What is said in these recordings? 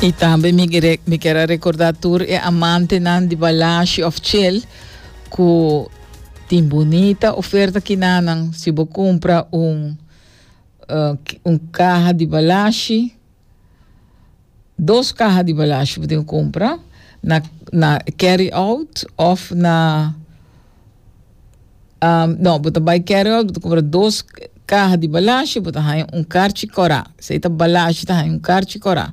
I tambe mi kere, mi quiere a recordar tur e amante nan di Balashi of Chel cu tin bonita oferta kinanan si bo compra un uh, un caja di Balashi dos caja di Balashi bo tin compra na na carry out of na Um, no, bo ta bai Carryall, bo ta compra dos caha di balashi, bo ta haya un karchi kora. Sei ta balashi, ta haya un karchi kora.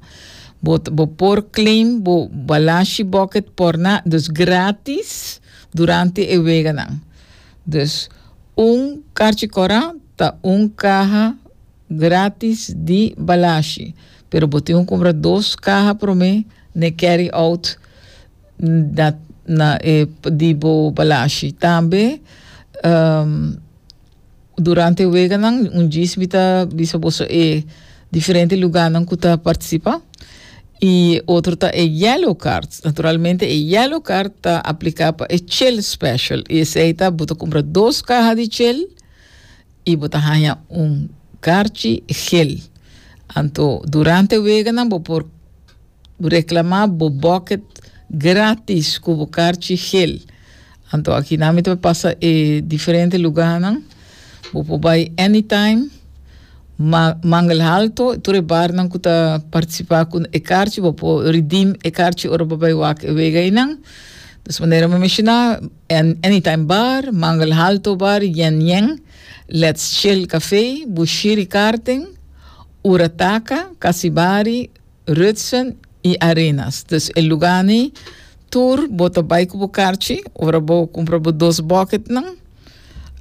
Bo, bo por claim bo balashi bucket por na, dus gratis durante e weganan. Dus un karchi kora ta un caha gratis di balashi. Pero bo tin ku compra dos caha prome ne carry out. na na e di bo balashi tambe um, durante weganan un djis mi ta bisa boso e diferente lugarnan ku ta partisipa i otro ta e yellow card naturalmente e yellow card ta apliká pa e chel special i esei ta bo ta kumpra dos kaha di chel i bo ta haña un karchi gel anto durante weganan bo por Reclama bo bucket gratis cu bo carchi gel. Anto aki na mi ta pasa e diferente lugarnan. Bo por bai anytime. Ma Mangel Alto, tur e barnan cu ta participa cu e carchi, bo por redeem e carchi ora bo bai wak e wega einan. Dus manera mi menciona, Anytime Bar, Mangel Alto Bar, Yen Yen, Let's Chill Café, Bushiri Karting, Ura Taka, Kasibari, Rutsen i Arenas. Dus e lugani tur bo ta bai ku bo karchi, ora bo kumpra bo dos bòketnan,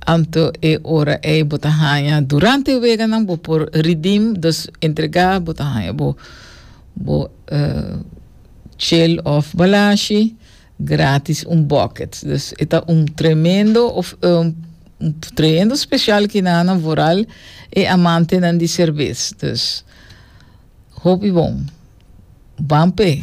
anto e ora ei bo ta haña durante e weganan bo por ridim, dus entregá bo ta haña bo bo chel òf balashi. Gratis un bucket. Dus e ta un tremendo of e un trehendo special ki na nan vooral e amantenan di cervez. Dus hopi bon. Ban p'e.